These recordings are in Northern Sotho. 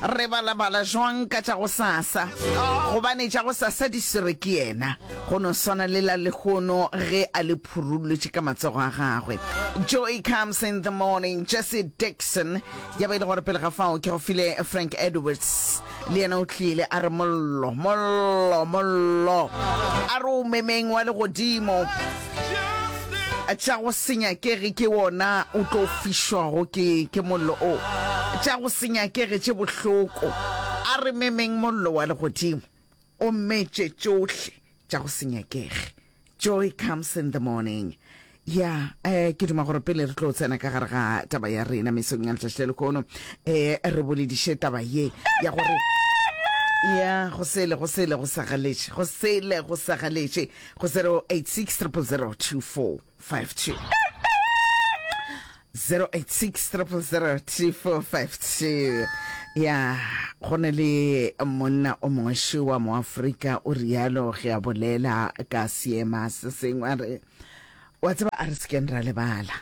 re balabala jwang ka tša go sasa gobane tša go sasa di swere ke yena go no swana le la lehono ge a le phurulletše ka matsogo a gagwe joy comes in the morning jesse dixon ya ba e le gore pele ga fao ke go file frank edwards le yena o tlile a re mollo mollo mollo a re o memeng wa legodimo tša go se nyakege ke wona o tlo fišwago ke ke mollo o tša go se nyakege tše bohloko a re memeng mollo wa legodimo o mmetše tšohle tša go se nyakege joy comes in the morning ya eh ke duma gore pele re tlo tsena ka gare ga taba ya rena mesong ya letšatši le lekono eh re bolediše taba ye ya gore ya go sele go sele go sa galetše go sele go sa galetše go 0860002452 ya go ne le monna o mongwe wa moafrika o rialo ge a bolela ka seema se sengwe a re wa tseba a re sekeng ra lebala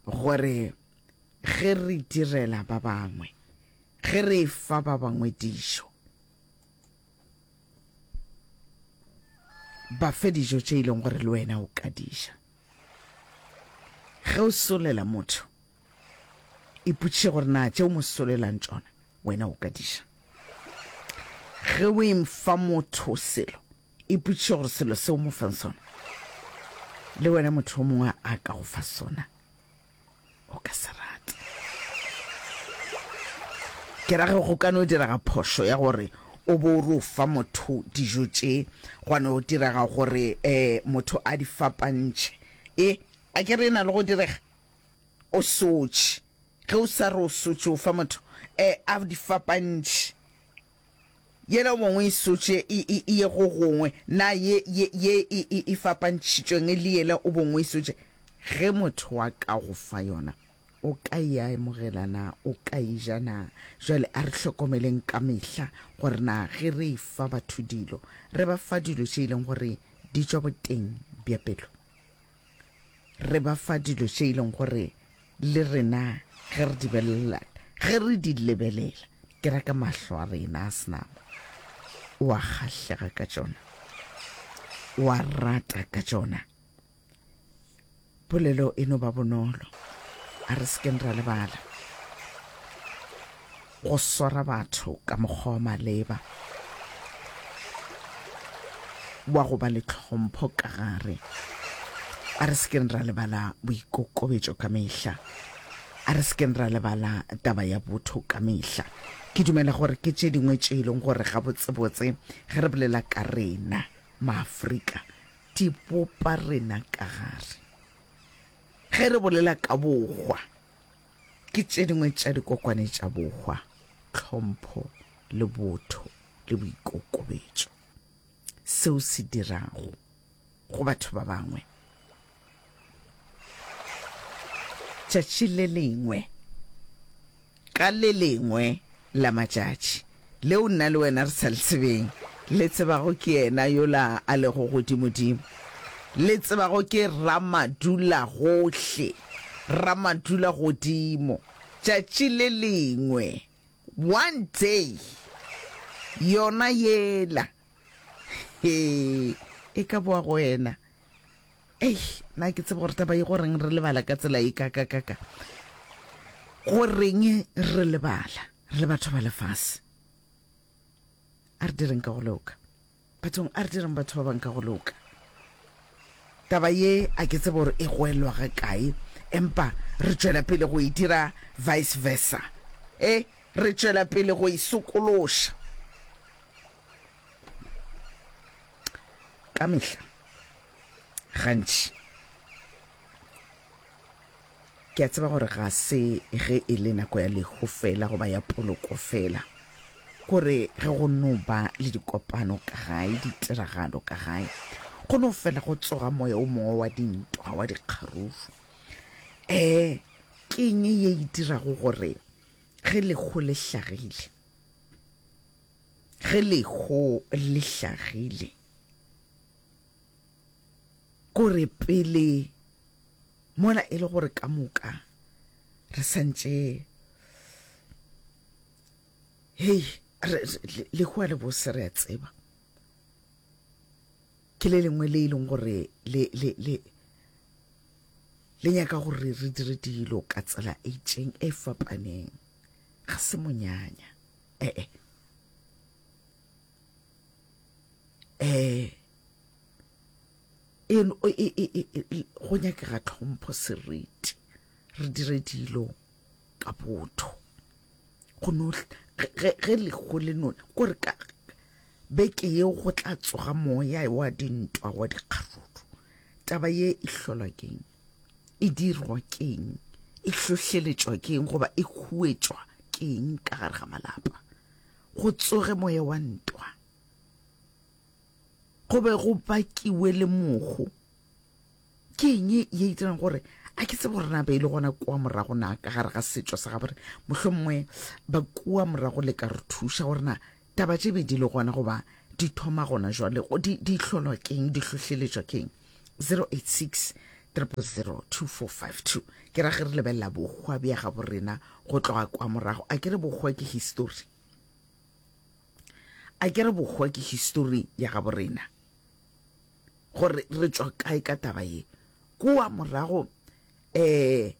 gore ge re direla ba bangwe ge re fa ba bangwe dijo Ba fe dijo tše e leng gore le wena o ka dija. Ge o solela motho, ipotšiše gore na tše o mo solelang tšona wena o ka dija. Ge o emfa motho selo, ipotšiše gore selo se o mo fang sona le wena motho o mongwe a ka go fa sona. o ka se rate. Ke ra ge go ka no direga phošo ya gore o bo o re o fa motho dijo tše gwa no direga gore um motho a di fapantšhe e a ke re e na le go direga o sotše ge o sa re o sotše o fa motho um a di fapantšhe Yela o mongwe e sotše e, e, e ye go gongwe, na ye, ye, ye e, e, e fapantšhitšweng le yela o bongwe e sotše? Ge motho wa ka go fa yona, o ka e amogela na? O ka e ja na? Bjale a re hlokomeleng ka mehla gore na ge re e fa batho dilo, re ba fa dilo tše e leng gore di tšwa boteng bja pelo. Re ba fa dilo tše e leng gore le rena ge re di belelela, ge re di lebelela, ke ra ka mahlo a rena a senama, o a kgahlega ka tšona, o a rata ka tšona. Polelo e no ba bonolo, a re sekeng ra lebala. go swara batho ka mokgwa wa maleba wa go ba le tlhompho ka gare. A re sekeng ra lebala boikokobetso ka mehla, a re sekeng ra lebala taba ya botho ka mehla. Ke dumela gore ke tše dingwe tše e leng gore gabotsebotse ge re bolela ka rena maafrika di bopa rena ka gare ge re bolela ka bokgwa. Ke tše dingwe tša dikokwane tša bohwa, tlhompho le botho le boikokobetšo. Seo se dirago go batho ba bangwe. Tšatši le lengwe ka le lengwe la matšatši. leo nna le wena re sa le tsebeng, le tsebago ke yena yola a lego godimodimo, le tsebago ke Ramadulagohle, Ramadulagodimo, tšatši le lengwe, one day, yona yela. he e ka boa go wena ei na ke tseba gore taba e goreng re lebala ka tsela e kakakaka goreng re lebala re le batho ba lefase a re direng ka go loka bathong a re direng batho ba bang ka go loka taba ye a ke tsebe gore e goelwa ga kae empa re tšwela pele go e dira vice versa e re tšwela pele go e sokološa ka mehla gantši ke a tseba gore ga se ge e le nako ya lehu fela goba ya poloko fela gore ge go no ba le dikopano ka gae ditiragalo ka gae go no fela go tsoga moya o mongwe wa dintwa wa dikgaruru um keng ye e dirago gore ge lekgo le hlagile Ge leho le hlagile, ko re pele mola e le gore ka moka re santše hei lehoa le bose re a tseba ke le lengwe le e leng gore le le le le nyaka gore re dire dilo ka tsela e itseng e fapaneng ga se monyanya ee eh e, e, e, e go nyakega tlhompho seriti re dire dilo ka botho go no ge lego le none kore ka beke yeo go tla tsoga moya wa dintwa wa dikgaruru taba ye e hlolwa keng e dirwa keng e hlohleletšwa keng goba e huetšwa keng ka gare ga malapa go tsoge moya wa ntwa go be go bakiwe le mogo ke eng ye e dirang gore a ke tsebo rena be e le gona kua morago na ka gare ga setšo sa gabore mohlomongwe ba kua morago le ka re thuša gore na Taba tše be di le gona goba di thoma gona jwale go di di hlolwa keng di hlohleletšwa keng 086 000 2452 ke ra ge re lebelela bokgwa bja gabo rena go tloga kwa morago a ke re bokgwa ke history a ke re bokgwa ke history ya gabo rena gore re tswa kae ka taba ye kua morago eh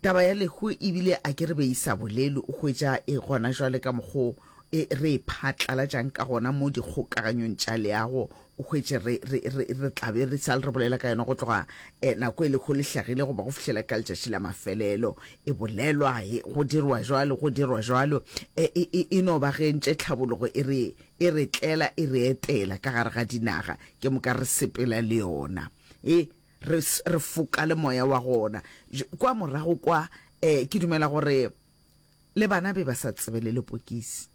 Taba ya lehu e bile a ke re be e sa bolelwe, o hwetša e gona jwale ka mokgwa o e, re e phatlalatšang ka gona mo dikgokaganyong tša leago, o hwetše re, re, re, re tla be re sa le re bolela ka yona go tloga eh, nako e lehu le hlagile goba go fihlela ka letšatši la mafelelo. E bolelwa, e, go dirwa jwalo, go dirwa jwalo. E, e, e, e no ba ge ntše tlhabologo e re, e re tlela, e re etela ka gare ga dinaga, ke moka re sepela le yona. E, re re foka le moya wa gona kwa morago kwa eh ke dumela gore le bana be ba sa tsebe le lepokisi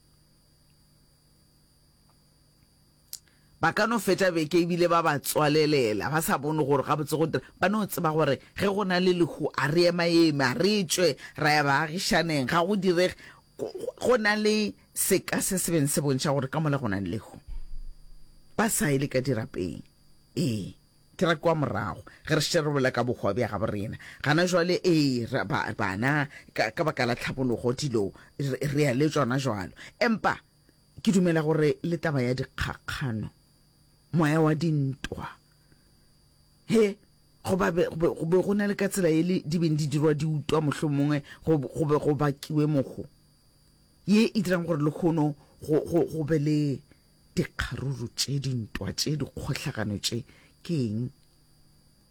ba ka no feta beke ebile ba ba tswalelela ba sa bone gore ga botse go dira ba no tseba gore ge go na le lehu a re ema eme a re tswe ra ya baagišaneng ga go direge go na le seka se se beng se bontšha gore ka mola go na le lehu ba sa ile ka dirapeng ee Ke ra kwa morago, ge re šetše re bolela ka bohwa bja gabo rena gana jwale, ee, ra, ba, bana, ka, ka baka la tlhabologo, dilo, re, re ya le tšona jwalo. Empa ke dumela gore le taba ya dikgakgano, moya wa dintwa, he, go ba be, go be go na le ka tsela yele di beng di dirwa di utwa, mohlomongwe go, go be go bakiwe mogo. ye e dirang gore lekhono go, go, go be le dikgaruru tše, dintwa tše, dikgohlagano tše. Ke eng?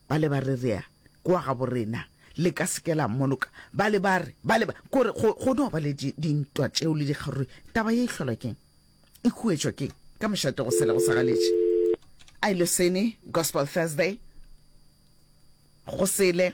Ba le ba re rea kwa gabo rena le ka seke la mmoloka. Ba le ba re, ba le ba, kore go, go no ba le di, dintwa tšeo le dikgaruru. Taba ye e hlolwa keng? E khuetšwa keng? Ka mošate go sele go sa galetše. I losene, Gospel Thursday, go sele.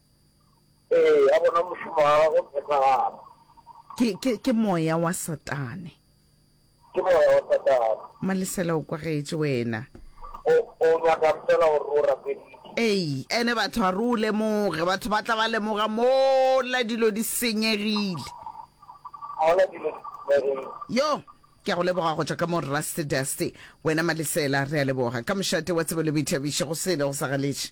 Ee, a bona mošomo wa gagwe o phethagala. Ke, ke, ke moya wa Satane. Ke moya wa Satane. Malesela o kwagetše wena. O, o nyaka fela gore o rapeditše. Ee, ene batho a re o lemoge, batho ba tla ba lemoga mola dilo di senyegile. Mola dilo di senyegile. Yo, ke a go leboga go tšwa ka mo Rust Dust. Wena Malesela, re a leboga. Ka mošate wa tsebo le boithabiši, go sele go sa galetše.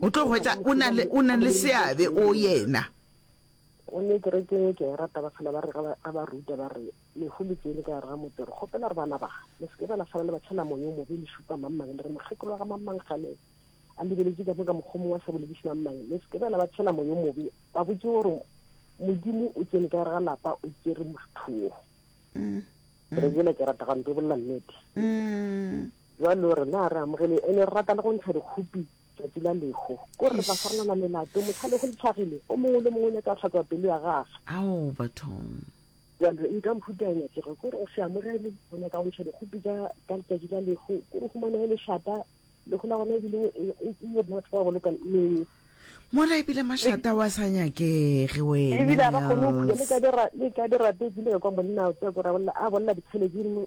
O tlo hwetša o na le, o na le seabe o yena. O ne kerekeng e ke a e rata, ba phela ba re, ga ba ruta, ba re, Lehu le tsene ka gare ga motse, re kgopela gore bana ba, le se ke ba lahlana le batšhela moya o mobe, le šupa mang-mang, le re mokgekolo wa ga mang-mang kgale a lebeletše ka mo ka mokgwa mongwe a sa bolediše mang-mang, le se ke ba la batšhela moya o mobe, ba botše gore Modimo o tsene ka gare ga lapa, o tsere motho wo. Kerekeng e ke e rata gantpi o bolela nnete. Bjalo rena re amogele ene re rata le go ntsha dikhupi tšatši la lehu. Ko re tla farolana melato, mohla lehu le tlhagile, o mongwe le mongwe o nyaka hlatswa pelo ya gagwe. Ao bathong. Bjalo eng ka mohuta ya nyakego? Ko re o se amogele, o nyaka go ntsha dikhupi tša ka letšatši la lehu, ko re humanehe lešata, lehu la gona ebile e le batho ba goloka meng. Mola ebile mašata wa sa nyakege wena. Ebile a ba kgone go phula le ka dirape, ke ile ka kwa monna o tswa ko ra bolela a bolela dikgele ke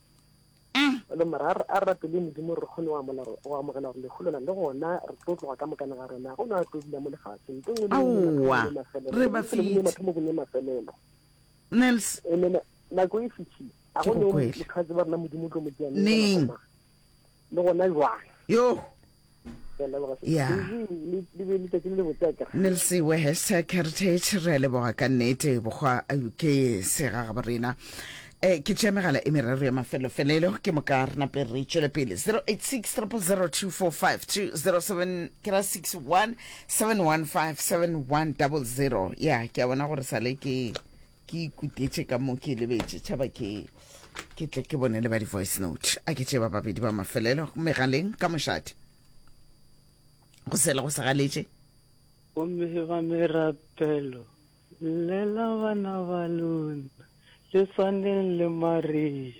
A. Lo mara a re rapeleng Modimo re kgone go amogela gore lehu lona le gona re tlo tloga ka mokana ga rena go na tlo dula mo lefaseng nto nngwe le mafelelo re ba fete mathomo go ne mafelelo Nels e nena nako e fitshi a go ne motho a tseba rena Modimo tlo mo dianeng neng le gona jwang yo ya nelsi wehes heritage re a leboga ka nnete bokgwa ke sega ga borena Eh, ke tšea megala e meraro ya mafelofelelo ke moka re nape re tšwele pele 086 0002452 07 ke ra 61 715 7100 ya ke a bona gore sale ke ke ikutetše ka mo ke lebetše tšhaba ke ke tle ke bone le ba di-voice note a ke tše ba babedi ba mafelelo megaleng ka mošate go sele go segaletše gomme ba merapelo llela bana ba lona le tshwaneng le maria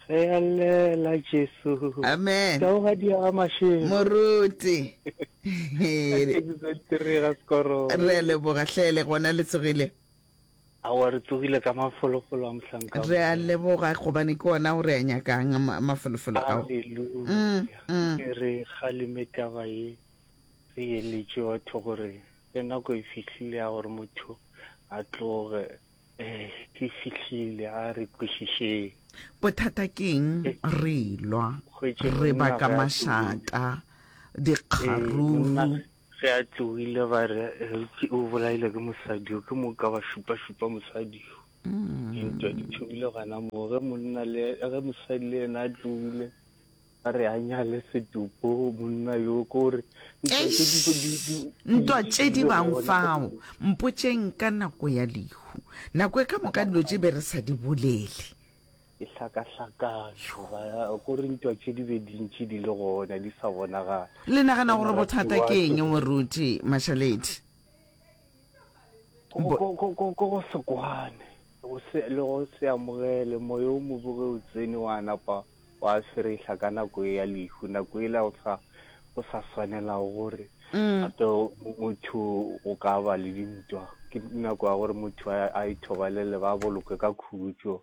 ge a llela jesu amen kaogadi ya gamašego moruti re leboga tlele gona le tsogile Aowa re tsogile ka mafolofolo a mohlanka. Re a leboga gobane ke ona o re a nyakang mafolofolo ao. Haleluya. Nke re kgaleme taba ye re eletše batho gore ge nako e fihlile ya gore motho a tloge eh e fihlile a re kwešišeng. Bothata ke eng? Re lwa, re baka mašata, dikgarufu. Ge a tlogile ba re, Eupši o bolaile ke mosadi yo, ke mo ka ba šupa-šupa mosadi yo. Dintwa di thomile gana moo. Ge monna le, ge mosadi le yena a tlogile, ba re a nyale setopo monna yo, ke gore ntwa tše di be di, di, di Ntwa tše di bang gona. fao. Mpotšeng ka nako ya lehu. Nako e ka moka dilo tše be re sa di bolele. Ke hlakahlakano, ba ko re ntwa tše di be dintši di le gona di sa bonagale. Le nagana gore bothata ke eng moruti Mashaledi? Ko go se kwane le go se amogele moya o mobe ge o tsene wa napa wa sweretlha ka nako e ya lehu nako e la go sa go sa swanelago gore gape motho o ka ba le dintwa ke nako ya gore motho a ithobalele ba bolokwe ka khutšo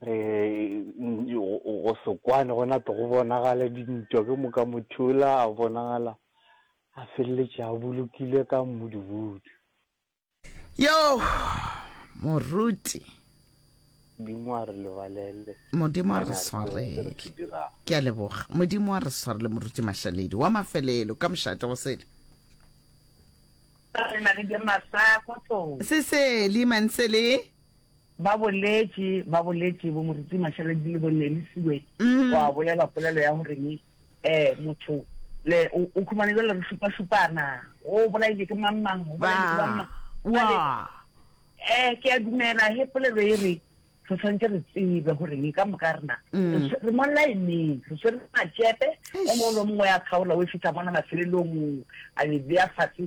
re go sekwane go nate go bonagala dintwa ke moka mothula a bonagala a feleletše a bolokile ka mmudubudu yo moruti modimo a re lebalele modimo a re swarele ke a leboga modimo a re swarele moruti mašaledi wa mafelelo ka mošate go sele seseli mansele Ba boletše, ba boletše, bo Moruti Mashaledi le bo Nelly Siwe, go a bolela polelo ya goreng um motho le o o khumane jwale re šupa-šupana, o bolaile ke mang-mang, o bolaile ke Ba, mang-mang. wa, Jwale, wa. um ke a dumela he polelo e re re tshwanetse re tsebe goreng ka moka rena re tshwe- re mo laeneng re tshwere matšepe o mongwe le o mongwe ya kgaola o e fitlha mona mafelelong a e beya fatshe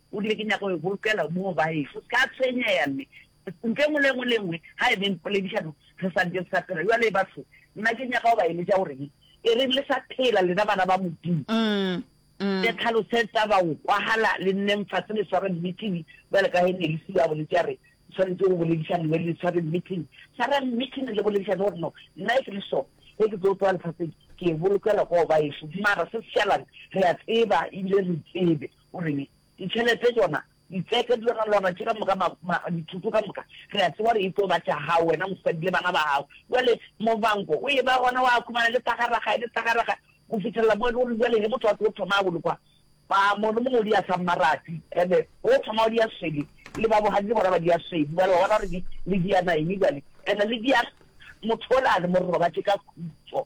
O rile, Ke nyaka go e bolokela moo baešo. O se ka tshwenyega, mme ntlo e nngwe le e nngwe le e nngwe ga e beng poledišano re sa ntše re sa phela. Bjale, batho, nna ke nyaka go ba eletša gore ke e reng le sa phela, lena bana ba Modimo. Le tlhalosetsa baokwahala, le nneng fase le sware mmitini, bjalo ka ge Nelisi yo a boletše a re, le swanetše go boledišana, le be le sware mmitini. Swarang mmitini le boledišane gore, No, nna e ke le sona, ge ke tlo tloga lefaseng, ke e bolokela go baešo. Mara se se šalang, re a tseba, ebile re tsebe. O reng? Ditšhelete tšona, ditseka, dilogalwana tše ka moka, ma, ma, dithoto ka moka, re a tseba gore e tlo ba tša gago wena, mosadi le bana ba gago. Bjale, mobanko o eba gona, wa khumana le tagaraga, le tagaraga, go fitlhelela mo e le gore bjale ge motho a tlo thoma a bolokwa, ba, mongwe le mongwe o di a sa mmarati, ene o thoma o di a swele, le ba bogadi le bona ba di a swele, bjale wa bona gore di, le di a naeme bjale, ene le di a, motho o le a le mororobatše ka khutšo.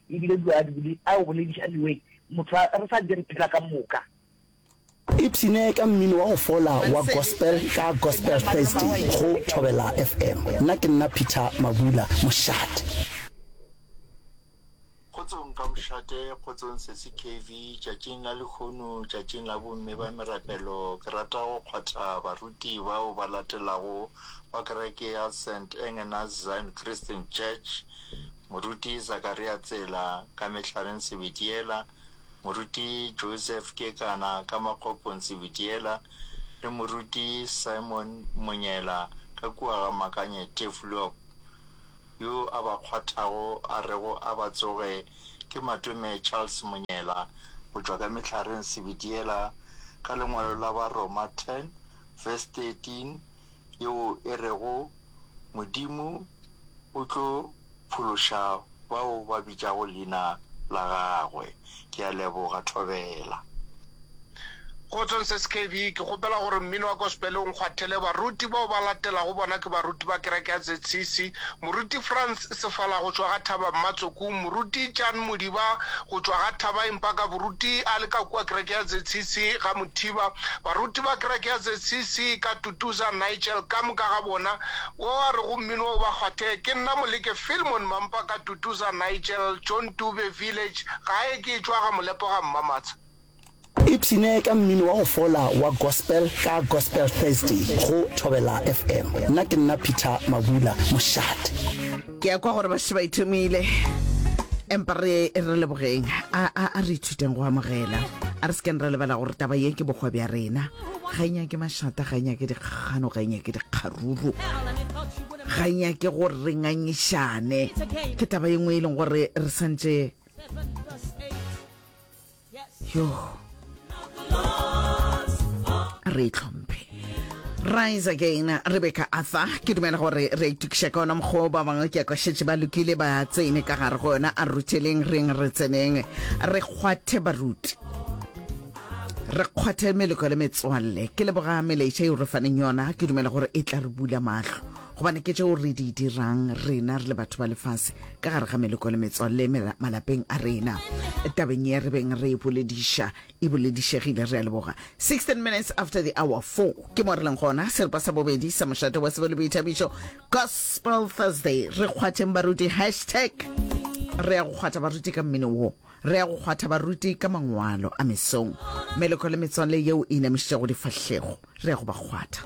E bile dilo a di a go bolediša anyway motho a re sa ntse re phela ka moka. Ipshine ka mmino wa go fola wa gospel ka Gospel Thursday go Thobela FM. Nna ke nna Peter Mabula, mošate. Kgotsong ka mošate, kgotsong Sesi KV, tšatšing la lehono, tšatšing la bomme ba merapelo, ke rata go kgwatha baruti bao ba latelago ba kereke ya St. Engena's Zion Christian Church Moruti Zakaria Tsela ka Mehlareng Sebitiela, Moruti Joseph Kekana ka Makgopong Sebitiela le Moruti Simon Monyela ka kua ga Makanye Tefloop, yo a ba kgwathago a rego a ba tsoge ke Matome Charles Monyela, go tšwa ka Mehlareng Sebitiela ka lengwalo la Baroma 10 verse 13 yeo e rego, Modimo o tlo phološa bao ba bitšago leina la gagwe. Ke a leboga, Thobela. Kgotsong SKB. Ke kgopela gore mmino wa Gospel o nkgwathele baruti bao ba latelago, bona ke baruti ba kereke ya ZCC, Moruti Frans Sefala go tšwa ga Thaba Mmatsokung, Moruti Jan Modiba go tšwa ga Thaba empa ka boruti a le ka kua kereke ya ZCC ga Mothiba, baruti ba kereke ya ZCC ka Tutuza, Nigel, ka moka ga bona, wo a rego mmino o ba kgwathee, ke nna Moleke Filmon Mampa ka Tutuza, Nigel, John Dube, Village, Gae ke etšwa ga Molepo ga Mmamatsha. Ipshine ka mmino wa go fola wa Gospel ka Gospel Thursday go Thobela FM. Nna ke nna Peter Mabula, mošate. Ke a kwa gore ba se ba ithomile, empa re re lebogeng. A, a, a re ithuteng go amogela. A re se keng ra lebala gore taba ye ke bokgwa bja rena. ga e nyake mašata ga e nyake dikgano ga e nyake dikgaruru ga e nyake gore re ngangišane ke taba ye nngwe e leng gore re santse yo re e tlhomphe rise again rebecca arthur ke dumela gore re itukiša ka ona mokgwa ba bangwe ke kwešetše ba lokile ba tsene ka gare go yona a rutheleng reng re tseneng re kgwathe baruti Re kgwathe meleko le metswalle. Ke leboga melaetša yeo re faneng yona. Ke dumela gore e tla re bula mahlo gobane ke tšeo re di dirang rena re le batho ba lefase ka gare ga meleko le metswalle mela- malapeng a rena tabeng ye re beng re e bolediša e boledišegile re a leboga 16 minutes after the hour 4 ke mo re leng gona seripa sa bobedi sa mošate wa sebo le boithabišo gospel thursday re kgwatheng baruti hashtag re ya go kgwatha baruti ka mmino wo Re ya go kgwatha baruti ka mangwalo a mesong. Meloko le metswalle yeo e inamišitšego difahlego, re ya go ba kgwatha.